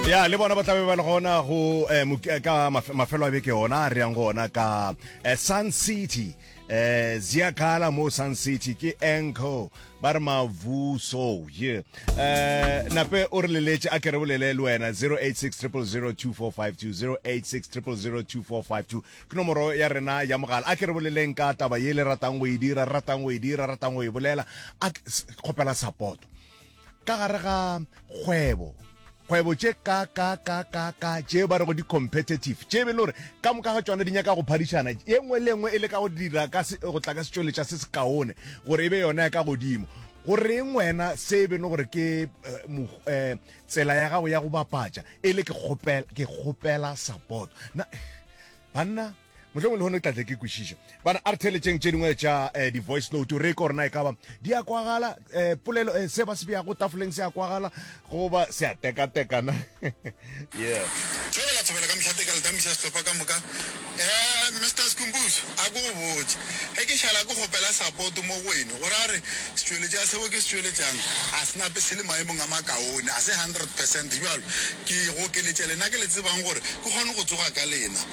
ya le bona ba tlabe ba le gona go eh, mok- eh, ka maf- mafelo a beke ona a re yang go ona ka eh, sun city eh ziakala mo sun city ke enco ba re mavuso ye eh nape o re leletse a ke re bolele le wena 0860002452 0860002452 ke nomoro ya rena ya mogala a ke re boleleng ka taba ye le ratang go e dira ratang go e dira ratang go e bolela a ke- s- kgopela support ka gare ga kgwebo kgwebo tše ka ka ka ka ka tše ba rego di-competitive tše be le gore ka moka ga tsona di nyaka go phadišana ye nngwe le nngwe e le ka go dira ka go tla ka setšweletša se se kaone gore e be yona ya ka godimo goreng wena se e be le gore ke um tsela ya gago ya go bapatša e le ke kgopela support banna Mohlomong lehono ke tla tle ke kwešiša. Bana, a re theeletšeng tše dingwe tša eh, di-voice note re ye ka gore na e kaba di a kwagala eh, polelo eh, se ba se beyago tafoleng se a kwagala goba se a tekatekana yeah Thobela thobela ka mohlate ka letamiša sehlopha ka moka eh Mr Skumbuzo a ko go botse ge ke šala ke kgopela support mo go wene gore a re setšweletša seo ke se tšweletšang a se nape se le maemong a makaone a se 100 percent bjalo ke go keletša lena ke le tsebang gore ke kgone go tsoga ka lena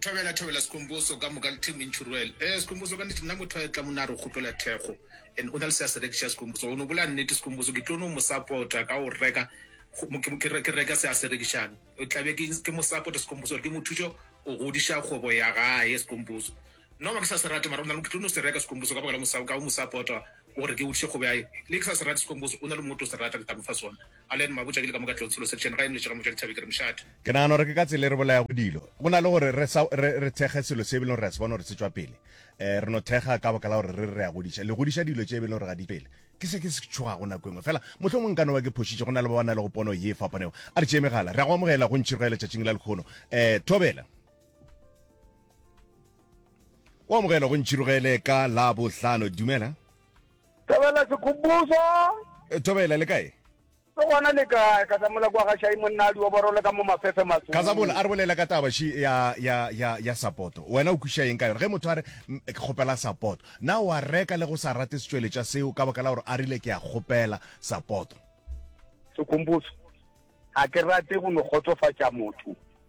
thobela thobela sekomboso ka moka le team insurel eh sekomboso ka nnete nna motho a tla mona a re kgopela thekgo and o na le se a se rekiša sekomboso o ne bola nnete sekomboso ke tlo no mo support-a ka o reka ke reka se a se rekišang o tlabe ke mo support sekomboso gore ke mo thuše go godiša kgobo ya gae sekomboso Nna wa ke sa se rate mara o na le ke tlo no se reka sekomboso ka baka la mosa ka o mosa pota o re ke o tše kgobe ya le ke sa se rate sekomboso o na le motho o se rata ke tla mo fa sona a le ma botša ke le ka mo ka tlong selo section ga e nletše ka mo tša dithabe ke re mošate Ke nagana gore ke ka tsela e re bolayago dilo go na le gore re sa re re thekge selo se e beleng gore re a se bona gore se tšwa pele eh re no thekga ka baka la gore re re a godiša le godiša dilo tše e beleng gore ga di pele ke se ke se tšhogago nako engwe fela motlho mongwe nka no ba ke phošitše go na le ba ba na le go pono ye e fapanego a re tšee megala re a go amogela go ntšhiroga letšatšing la lekgono eh thobela o amogela go ntšhirogele ka la bohlano dumela thobela sekgopuso eh, thobela le kae ke gona le kae ka tsamola kwa ga šai monnadi wa borole ka mo mafefe matso ka tsamola a re bolela ka taba shi ya ya ya ya sapoto wena o kwisha eng ka yona ge motho a re ke kgopela sapoto na wa reka le go sa rate setsweletša seo ka baka la gore a rile ke a kgopela sapoto sekgopuso ga ke rate go no kgotsofatša motho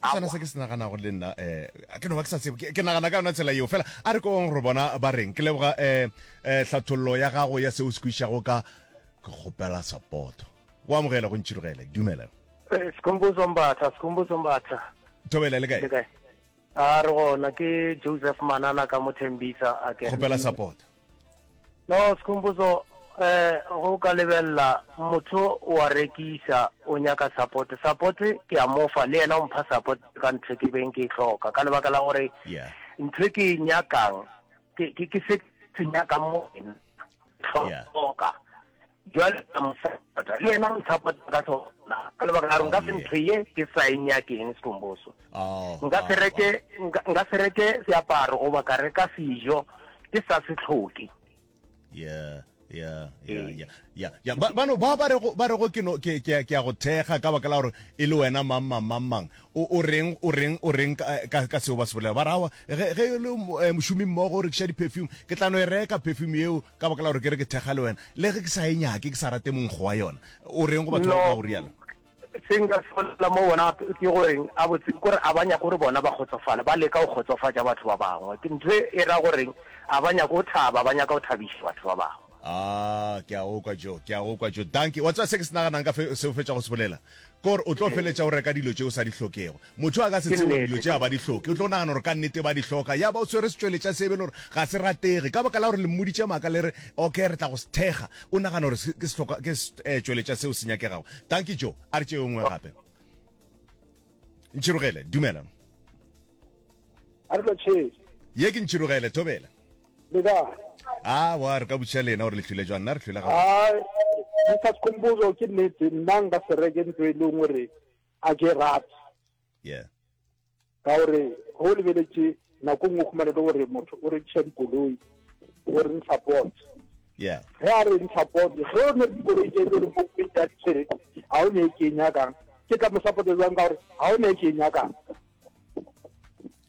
ke sona se ke se naganago le nna um ke no ba ke sa tsebo ke nagana ka yona tsela yeo fela a re kong re bona ba reng ke leboga um um hlathololo ya gago ya seo se kwišago ka ke kgopela sapoto o amogela go ntšhirogele dumela eh, sekhomboso mbatha sekhomboso mbatha thobela le kae a re gona ke joseph manana ka mothembisa a ke kgopela sapoto No, Skhumbuzo, eh, go ka lebella, motho o a rekisa, o nyaka support. Support ke a mo fa, le yena o mpha support ka ntho e ke beng ke e hloka, ka lebaka la gore Yeah. ntho e ke e nyakang, ke, ke, ke se ke nyakang mo wena. Yeah. Hloka. Bjale ka mosapota, le yena mosapota ka sona, ka lebaka la gore nka se oh, ntho ye ke sa e nyakeng sekomboso. Oh, nka se oh, reke, nka se reke seaparo goba ka reka sejo ke sa se tlhoke. Yeah ya ya eh. ya ya ya ba ba ba ba rego ba rego ke no ke ke ke go thega ka baka la gore e le wena mang mang mang mang o o reng o reng o reng ka ka seo ba se bolela ba rawa ge ge le eh, mošomi mmogo o rekisa di-perfume ke tla no e reka perfume eo ka baka la gore ke re ke thekga le wena le ge ke sa e nyake ke sa rate monkgo wa yona o reng go batho ba ka go rialo se nka se bolela mo bona ke goreng a botse kore a ba nyako gore bona ba kgotsofale ba leka go kgotsofatša batho ba bangwe ke ntho e ra goreng a ba nyako go thaba ba nyaka go thabiša batho ba bangwe Ah, ke a okwa jo, ke a okwa jo. Danke. Wa tswa se ke se naganang ka fe se o fetša go se bolela. Ke gore o tlo feletša o reka dilo tše o sa di hlokego. Motho yo a ka se tsebe gore dilo tše a ba di hloke, o tlo nagana gore ka nnete ba di hloka, ya ba o swere setšweletša se e be e le gore ga se ratege. Ka baka la gore le mmoditše maaka le re, Ok, re tla go se thekga, o nagana gore ke sehlokwa, ke setšweletša seo se nyakegago. Dankie, Joe. A re tšee yo nngwe gape. Ntšhirogele, dumela. A re tlo tšhee. Ye ke Ntšhirogele, thobela. Le ka. Ah, wa re ka butša lena gore le hlwile jwang, nna re hlwile ga. Ah, Mr. Sikhumbuzo ke nnete nna nka se reke ntlo e leng gore a ke rate. Yeah. Ka gore go lebeletše nako nngwe khumane le gore motho o rekiša dikoloi o re ntsha pot. Yeah. Ge a re ntsha pot, ge o ne dikoloi tse e le gore mo kwe tsa ditshwere ga o ne e ke nyakang. Ke tla mo support jwang ka gore ga o ne e ke nyakang.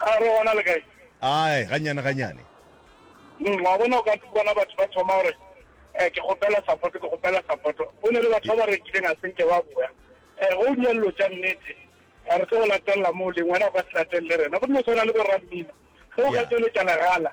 A re gona le kae? Ae, gannyane gannyane. Mm, wa bona, o ka bona batho ba thoma gore, Eh, ke kgopela sapoto, ke kgopela sapoto. Go ne le batho ba ba rekileng a se nke ba boya. Eh, ge o dira dilo tša nnete, eh, re tlo go latelela moo leng, wena o ka se latelele rena. Go dilo tshwana le bo-rammino, ge o ka tšweletša legala,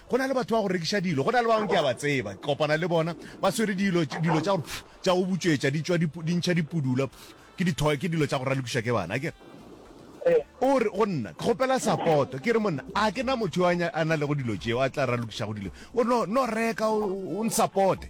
Go na le batho ba go rekiša dilo, go na le ba bangwe ke a ba tseba, ke kopana le bona, ba swere dilo, dilo tša gore pff, tša go butšwetša, di tšwa di, di ntšha dipudula, pff, ke di-toy, ke dilo tša go ralokišwa ke bana, akere? O re go nna, Ke kgopela sapoto. Ke re, Monna, a ke na motho yo a, a na lego dilo tšeo, a tla ralokišago dilo? O re, No, no reka, o, o nsapote.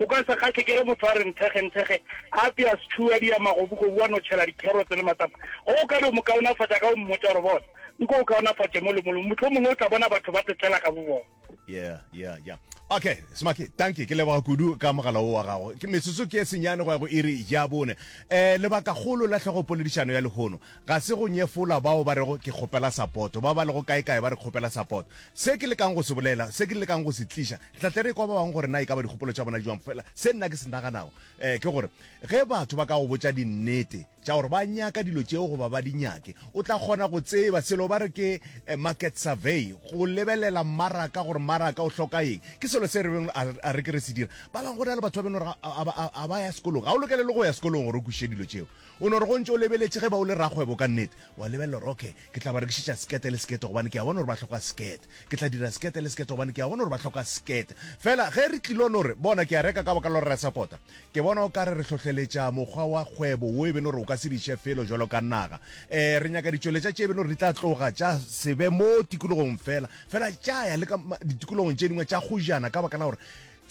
O ka se kgahle ke ge motho a re nthekgenthekge, a apea setšhuo, a dia magobugobu, a no tšhela dikherotse le matapa. O ka no mo kaonafatša ka go mmotša gore, Bona, nko o kaonafatše mo le molo, mohlomongwe o tla bona batho ba tetlela ka bobona. Yeah, yeah, yeah. Okay, Smakhi, dankie. Ke leboga kudu ka mogala wo wa gago. Ke metsotso ke e senyane go ya go iri ya bone. Eh, lebaka kgolo la tlhogo poledišano ya lehono ga se go nyefola bao ba rego ke kgopela sapoto, ba ba lego kae-kae ba re kgopela sapoto. Se ke lekang go se bolela, se ke lekang go se tliša, Re tla tle re kwa ba bangwe gore na e ka ba dikgopolo tša bona di jwang. Fela se nna ke se naganago um ke gore ge batho ba ka go botša dinnete tša gore ba nyaka dilo tšeo goba ba di nyake, o tla kgona go tseba selo ba re ke um market survey, go lebelela mmaraka gore mmaraka o hloka eng. Ke selo se re beng a a re ke re se dira. Ba bangwe go na le batho ba beno re ga ga ga ba ya sekolong. Ga o lokele le go ya sekolong gore o kwešiše dilo tšeo. O no re go ntše o lebeletše ge ba o le rakgwebo ka nnete, wa lebelela gore okay Ke tla ba rekišetša sekete le sekete gobane ke a bona gore ba hloka sekete. Ke tla dira sekete le sekete gobane ke a bona gore ba hloka sekete. Fela ge re tlilo no re, Bona, ke a reka ka baka la gore re a sapota, ke bona o ka re re hlohleletša mokgwa wa kgwebo wo e be no re o ka se di še felo bjalo ka naga. Ee, re nyaka ditšweletša tše e be no re di tla tloga tša se be mo tikologong fela, fela tša ya le ka ditikologong tše dingwe tša go jana ka baka la gore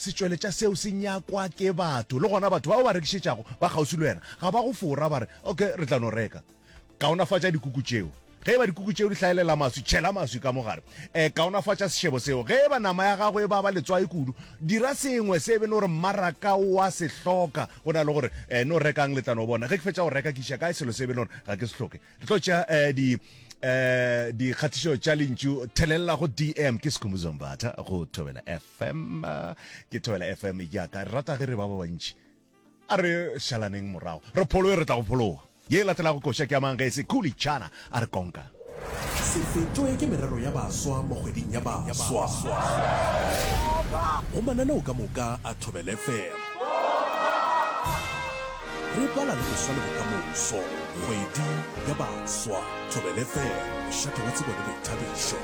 setšweletša seo se nyakwa ke batho. Le gona batho ba o ba rekišetšago ba kgauswi le wena ga ba go fora, ba re, Okay, re tla no reka. Kaonafatša dikuku tšeo. Ge e ba dikuku tšeo di hlaelela maswi, tšhela maswi ka mo gare. E, kaonafatša sešebo seo. Ge e ba nama ya gago e baba letswai kudu, dira sengwe se e be no re mmaraka o a se hloka go na le gore e, no rekang letlano. O bona, ge ke fetša go reka ke iša kae selo se e be no re ga ke se hloke? Re tlo tšea e, di, e, dikgatišo tša lentšu thelelela go DM. Ke Skhumbuzo Mbatha go Thobela FM. Ke Thobela FM ya ka. Re rata ge re ba ba bantši. A re šalaneng morago, re phologe, re tla go phologa. Ye e latelago koša ke ya mang ge e se Kuli Chana a re konka? Se fetšwe ke merero ya baswa mo kgweding ya baswa. Go mananeo ka moka a Thobela FM. Re bala le go swa le bokamoso. Kgwedi ya baswa. Thobela FM, mošate wa tsebo le boithabišo.